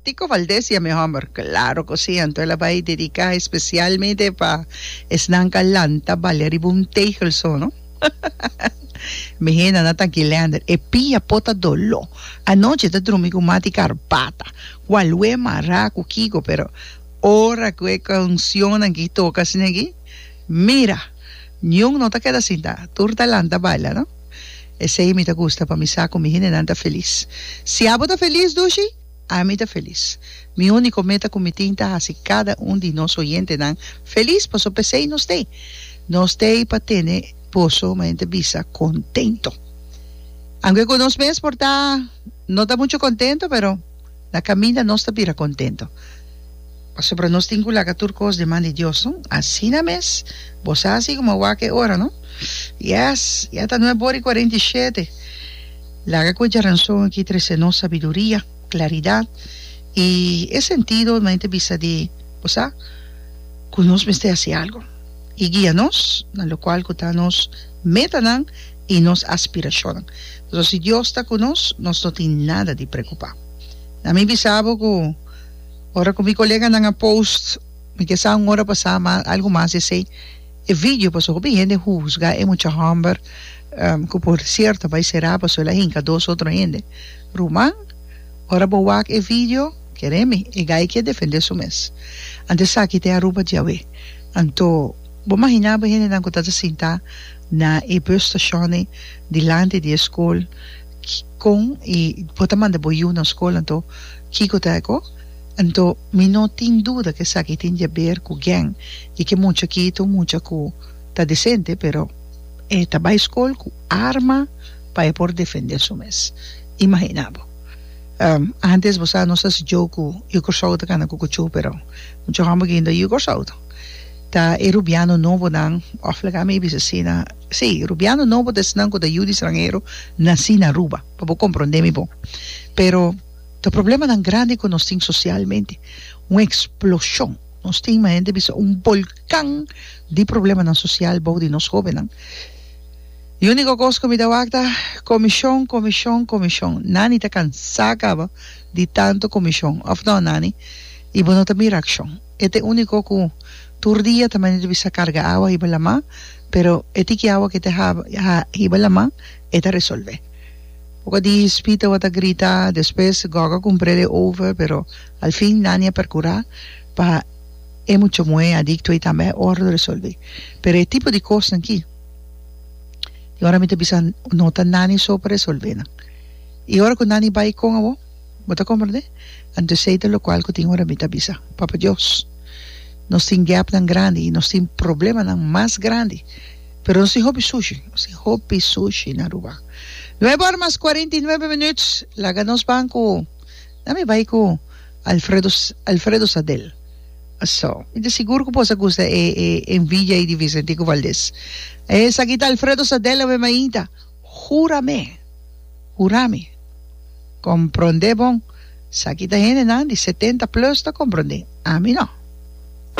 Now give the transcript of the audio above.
Tico Valdez ya mi homber? Claro cu si, anto el a bay dedica especialmente pa esnan ca lanta balia riba un tegel so, no? Mi henda na ta Guilander, e pia po ta dolo, anochi ta drumi cu mati carbata, cua lue mara cu kico, pero ora cu e cancionnan gin toca asina gin, mira! Niun no ta keda sinta, tur ta lanta balia, no? Esei mi ta gusta pa mi sa ku mi hindenan ta felis. Si abo ta felis dushi, ami ta felis. Mi úniko meta ku mi tin ta hasi kada un di nos oyentenan felis, pasobra p'esei nos t'ei. Nos t'ei pa tene boso, manera mi ta bisa, kontento. Aunke ku nos mes por ta no ta muchu kontento, pero Na caminda nos ta bira contento, pasobra nos tin cu laga tur cos den man di Dios, no? Asina mes, bo sa haci como a wak e ora, no? Yes! Ya ta nueb ora y cuarenta y shete. Laga cu e djaranzon aki trece nos sabiduria, claridad y e sentido di mente bisa di, bo sa, cu nos mester haci algo. Y guia nos na locual cu ta nos metanan, i nos aspirashonnan. Pasobra si Dios ta ku nos, nos no tin nada di preokupá. Na mi bisa bo ku ora ku mi koleganan a post, mi ke sa un ora pasá mas, algu mas di esei, e vidio, pasobra hopi hende husga e mucha hòmber, ku por sierto bai será pasobra el a hinka dos otro hende. Ruman, ora bo wak e vidio, keremi, e gai ke defendé su mes. Anto esaki ta e Aruba diawe. Anto, bo imaginá bo e hendenan ku ta ta sintá. na e busstashonnan dilanti di e skol kon i bo ta manda bo yu na skol anto kiko ta eko anto mi no tin duda ke esaki tin di aber ku gen di ke mucha ki ta un mucha ku ta desente pero e ta bai skol ku arma pa e por defende su mes imahina bo antes bo sa nos ta hasi jou ku yu Kòrsou ta kana ku kuchu pero mucha hòmber guinda yu Kòrsou. Ta e rubiano nobonan, òf laga mi a bisa asina, sí, rubiano nobo ta esnan ku ta yu di stranhero nasí na Aruba, pa bo komprondé mi bon. Pero ta problemanan grandi ku nos tin sosialmente, un eksploshon, nos tin manera di bisa un bolkan di problemanan sosial bou di nos hóbennan. E úniko kos ku mi ta wak ta, komishon, komishon, komishon. Nani ta kansá kaba di tantu komishon, òf nò Nani? I bo no ta mira akshon. E ta e úniko ku tur dia ta mester bisa karga awa hiba lamá, pero e tiki awa ku e ta haba hiba lamá e ta resolve. Poco di spí tabata grita, despues goga kumpré di e over, pero al fin Nani a perkurá pa e mucha muhé adikto i tambe e órdo resolví. Pero e tipo di kosnan ki i ora mi ta bisa no ta Nani so pa resolve nan. I ora ku Nani bai kon abo? Bo ta komprendé? Anto esei ta lokual ku tin ora mi ta bisa, Papa Dios, nos tin gèpnan grandi i nos tin problemanan mas grandi, pero nos tin hopi sushi, nos tin hopi sushi na Aruba. Nuebe ora mas kuarenta i nuebe minüt, laga nos ban ku, na mi bai ku Alfredo, Alfredo Sadel. So, mi ta sigur ku boso a gusta e, e envidia ei di Vicentico Valdez. Esaki ta Alfredo Sadel, awe mainta. Hura me, hura mi. Comprende bon, sa ki ta hendenan di setenta plus ta comprende, ami no.